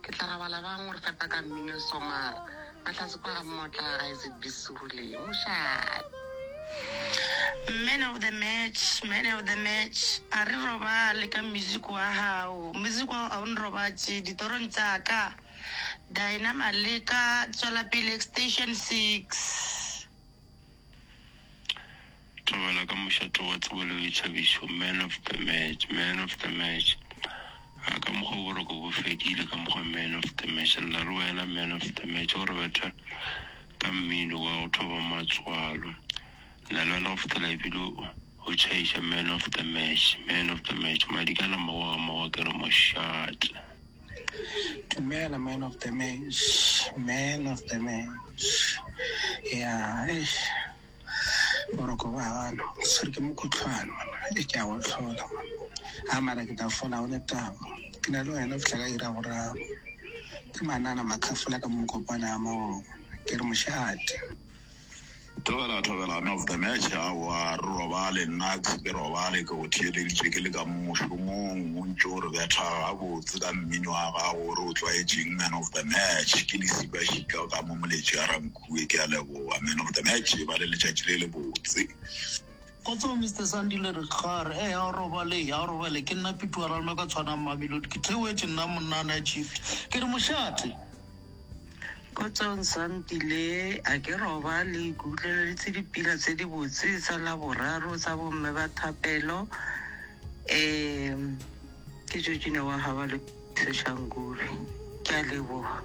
Ke tla rabala bang go re fepa ka mmino e somara ba tlase kwa ga mmotla ga Isaac Bisule. Mošate. Man of the match, man of the match. A re robale ka music wa hao. Music wa hao a o nrobatše ditorong tsa ka. Dinah Maleka, tswela pele Extension six. Thobela ka mošate wa tsebo le boithabišo, man of the match, man of the match. A ka mokgwa wo boroko bo fedile ka mokgwa man of the match, lla re wena man of the match o re betha ka mmino wa go thoba matswalo. Lla le wena go fihlela ebile o tšhaiša man of the match, man of the match. Madikana mmago ga mmago ke re mošate. Dumela man of the match, man of the match, ya eish. Boroko bwa gano o tshwere ke mokutlhwane monna e ke a go tlhola a mara ke tla fola go ne taba ke na le wena fihla ka ira boraro ke manana makhafola ka mokopana ya magogo ke re moše ate thobela thobela no of the match a wa re robale nna ke robale ke go theeleditše ke le ka mošomong o ntse o re betha gabotse ka mmino wa gago o re o tlwaetšeng man of the match ke le siba šika ka mo moletši a ranko Rue, ke a leboga. Amen, go tla ne a tšee ba le letšatši le le botse. Kgotsong Mister Sandile re kgare ee a o robale a o robale ke nna Pituarano ka tshwanang Mamelodi ke theoetše nna monnana ya chief ke re mošate Kgotsong Sandile a ke robale ke utlweleditse dipila tse di botse tsa la boraro tsa bomme ba thapelo um ke jojine wa gaba le seshankurwi ke a leboga